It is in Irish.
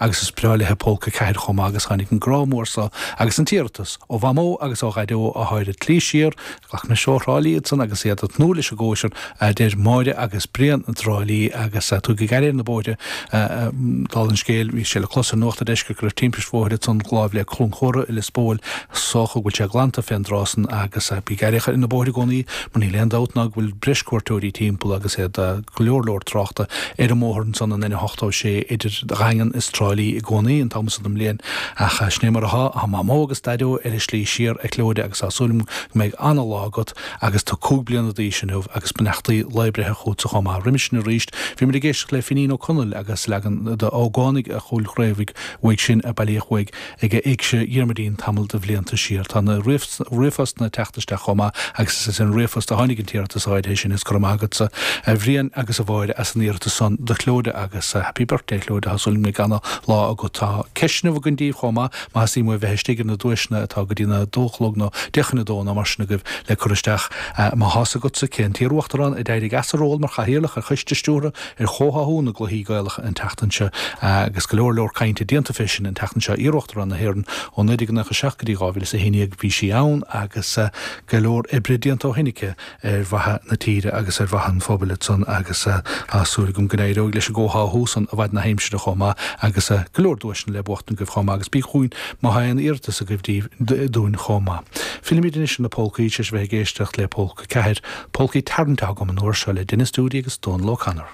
Agus is breá léithe Polca 4 chomh maith agus tháinig an grá mór so agus an t-iarratas ó Mhamó agus ó Dhaideo athá ar a slí siar, glacaimse, ó Thrá Lí iadsan agus iad a' tnúth leis an gcóisir, adeir Máire agus Brian i dTrá Lí agus tugaigí aire ar na bóithre, dála an scéil, bhí sé le clos ar Nuacht a' Deiscirt go raibh timpist bhóthair ansan láimh le Cluain Chumhra i Lios Póil, is dócha go bhfuil sé glanta fén dtráth san agus tugaigí aire ar na bóithre i gcónaí mar níl aon dabht ná go bhfuil breis cuairteoirí timpeall agus iad a' go leor leor tráchta ar an mbóthar ansan an N86 idir Dhaingean is Trá Lí i gcónaí an t-am san den mbliain ach sin é mar atá, tá Mamó agus Daideo ar a slí siar a Chlóda agus tá súil agam go mbeidh an-lá agat agus tú cúig bliana d'aois inniu agus beannachtaí lae breithe chughatsa chomh maith. Roimhe sin arís bhí muid ag éisteacht le Finín Ó Conaill agus leagan d'Ógánaigh a' Chúil Chraobhaigh uaidh sin a bailíodh uaidh ag a Éigse Dhiarmuidín tamall de bhlianta siar. Tá na ríomhphostanna ag teacht isteach chomh maith agus is as an ríomhphost a tháinig an t-iarratas áirithe sin, is go raibh maith agatsa a Bhriain agus a Mháire as an iarratas san do Chlóda agus Happy Birthday a Chlóda, tá súil agam go mbeidh ana lá agat. Tá ceisteanna againn daoibh chomh maith, má theastaíonn uaibh bheith istigh ar na duaiseanna atá go dtína dó a chlog nó deich chun a dó nó mar sin agaibh le cur isteach. Má thá 's agatsa cé an t-iar-uachtarán a d'éirigh as a ról mar chathaoirleach ar Choiste Stiúrtha ar chomhtháthú na gcluichí Gaelacha an tseachtain seo agus go leor leor cainte déanta fé sin an tseachtain seo. Iar-Uachtarán na hÉireann ó 1997 go dtí 2011 bhí sí ann agus go leor oibre déanta ó shin aici ar mhaithe na tíre agus ar mhaithe an phobail ansan agus tá súil agam go n-éireoidh leis an gcomhtháthú san i bhfaid na haimsire chomh maith agus go leor duaiseanna le buachtaint agaibh chomh maith agus bígí chugainn má thá aon iarratas agaibh dúinn chomh maith. Fillimid anois ar na polcaí, tar éis a bheith ag éisteacht le Polca 4, polcaí tarraingthe agam an uair seo le Denis Doody agus Dónal O'Connor.